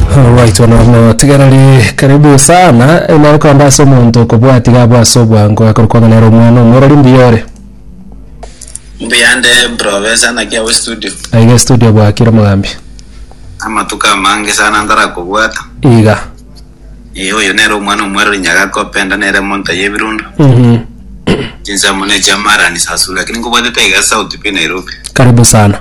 Alright bono motigereri karibu sana nabo kamba ase omonto okobwati gabo ase obwango akoro kwanga nere omwana omorori mbuya ore mbuyande profesa naki awe studio aiga studio bwakire mogambi amatuko amange sana ndarakobwata iga Eh, oyo nere omwana omwerori nyagakopenda nere monta yebirundo Mhm. chinsemo ne chiamarani sasu lakini nkobwatete iga sauti pi nairobi karibu sana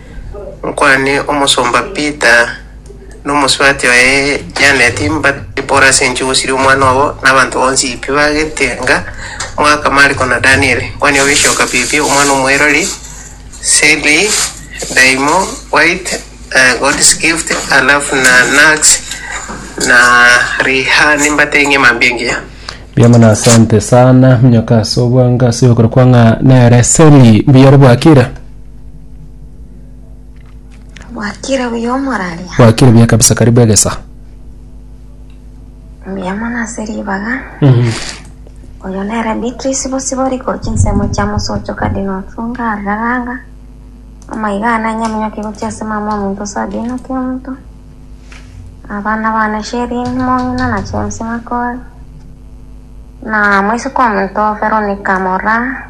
Nkwane omosomba Peter na omosubati oye Janet mbatebie pore ase enchera gosiria omwana obo na abanto bonsi pi bagetenga Mwaka, Mariko na Daniel. Nkwane ogesioka pipi omwana omoirori Sally, Daimo, White, eh, God's Gift, alafu na Nax na Rihani mbatebie ng'ima mambia engiya. Mbuya mono asante sana, minyoka ase obwango ase ogokora kwa ng'a nere Seli, mbuyore bwakire. Bwakire buya omoraria. Bwakire buya kabisa karibu egesa. Mbuya mono ase ribaga. Oyo nere Beatrice Bosibori korwa chinsemo chia Mosocho Cardinal Otunga Araranga. Amaiga ane anyaminyoke gochia ase mama omonto Sabina Kiamonto. Abana bane Sherin Mong'ina na James Makori. Na moiseke omonto Veronica Moraa.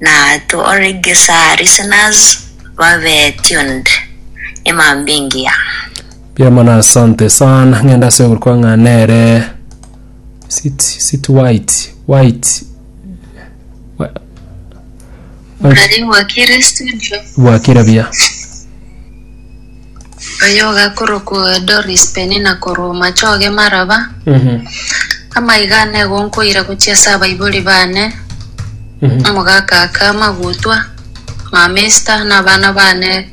na to already sir listeners babe tuned imambingia Mbuya mono asante sana ng'enda ase ogorokwa ng'a nere sit sit white white Wa- white- Nari wakire studio. bwakire buya Oyoga korokwa Doris Penina korwa Omachoge Maraba, amaiga ane igo nkoira gochia ase abaibori bane, omogakaka Magutwa, mama Esther na abana bane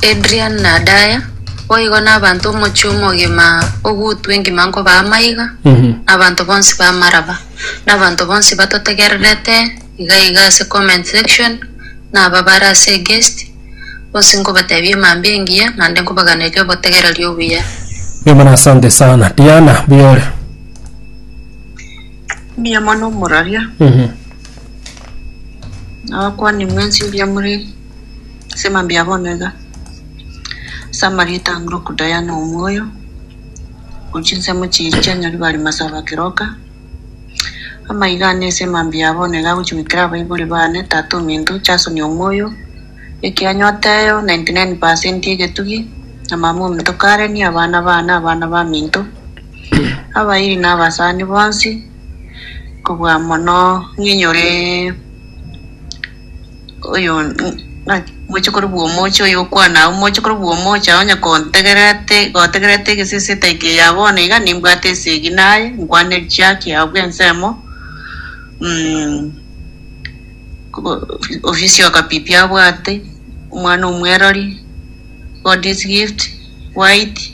Adrian na Adaya. Boigo na abanto omochie omogima ogutwa engima nkobaa amaiga, na abanto bonsi ba Maraba, na abanto bonsi batotegererete iga iga ase comment section, na aba bare ase eguest. Bonsi nkobatebia emambia engiya, naende nkobaganeria obotegereri obuya. Mbuya mono asante sana Diana mbuya ore Mbuya mono omororia, Mhm. nabakwani mwensi mbuya more ase emambia bono iga. Ase amarieta a Ngoroku Diana Omoyo, ochinsemo chiiri chianyaribari masaaba kiroka, Amaiga ane ase emambia yabo nigo agochia goikera abaibori baane, tata ominto, Jasoni omoyo, ekianya oteyo, 99 percent egetugi, na mama ominto Kareni, abana baane, abana baminto, abairi na abasani bonsi, kobua mono ng'inyoree. oyo ng'aki moche korobua omoche oyo okwana agwo moche korobua omoche agwo onye kontegerete gotegerete egesesete eke ya bono iga nimbwate esegina aye nkwane chiaki abwo ensemo mm, ko- ofisi okapipi abwate omwana omwerori God is gift white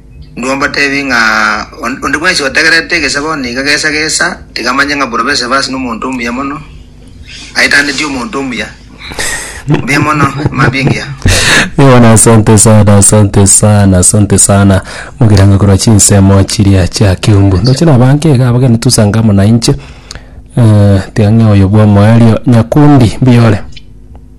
Ndombateebie ng'a on- onde bwensi otegererete egesabo niga gesa gesa, tiga amanye ng'a bworoba esabo ase nomonto omuya mono, aitanetie omonto omuya. Mbuya mono, mambingia. Yohana asante sana asante sana asante sana mogiranga korwa chinsemo chiria chia kiungu ndoche nabanke iga abageni tusanga amo nainche Eh, tiga ng'e oyo bwa omoerio nyakundi mbiyore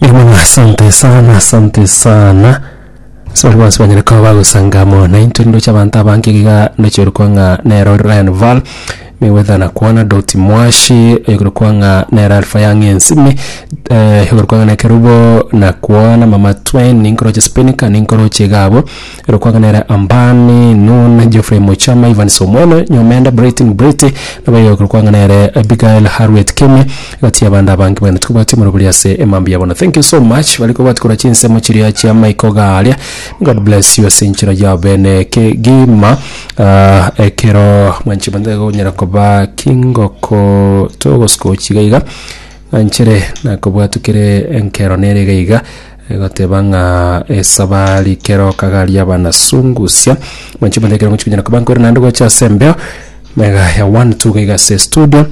Irumana, asante sana, asante sana. Sori bonsi banyare koba bagosanga mono intwe ndoche abanto abange iga ndoche orokwa ng'a nero Ryan Val Mayweather nakwana Doti Mwashi oyorokwa ng'a nero Alpha Young Ensimi eh, oyorokwa ng'a nero Kerubo nakwana Mama Twain ninkoroche Spinika ninkoroche iga abwo Ero kwaganera Ambani, Nun, Geoffrey Muchama, Evans Omweno, Nyomenda, Brighton Brity, nabo iga ekero kwaganere Abigail Harriet Kemi, egati y'abande abange baino tikobwati omorero boria ase emambia yabo. Na thank you so much baria kobwati korwa chinsemo chiria chia maiko iga aria. God bless you ase enchera yao bene kegima. Ah, ekero mwanche bande iga gonyara koba kingoko togosuka gochia iga iga, nanchere nakobwatu kere enkero nere iga iga. Egoteba ng'a esaba rikeroka garia banasungusia mwanche manya ekero mochikonyara koba nkore naende gocha ase embeo mega ya one two gaiga ase studio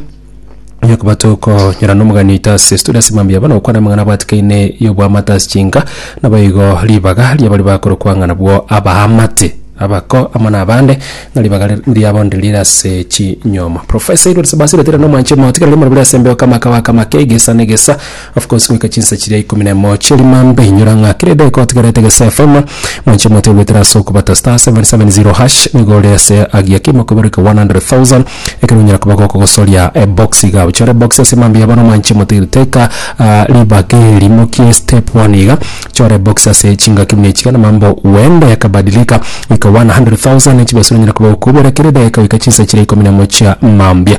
onye koba tokonyora nomogani oito ase studio ase mambia bono gokwana amang'ana abatikaine y'oboamate ase chinka nabo igo ribaga ria baria bakorokwa ng'a nabwo abaamate abako amo na abande ng'a ribaga ri- riabo ndiri rire ase chinyoma Professor Edward Sebasiri oteba nomwanche motiga riria more bare ase embeo kama kabaka make egesa na egesa Of course goika chinsa chiria ikomi na emo chia rimambe inyora ng'a kera edaika otigarete gese FM mwanche moto egwetera ase okobata star 770 hash nigo ore ase agiya kimo kobereka 100,000 ekero onyara koba gokogosoria ebox iga gochore ebox ase rimambe ya bono mwanche moto eri teka ah, ribaga eri mokie step 1 iga chora ebox ase chingaki buna echiga na mambo wende yakabadilika goika 100,000 chibesa onyara koba gokobera kera edaika goika chinsa chiria ikomi na emo chia mambia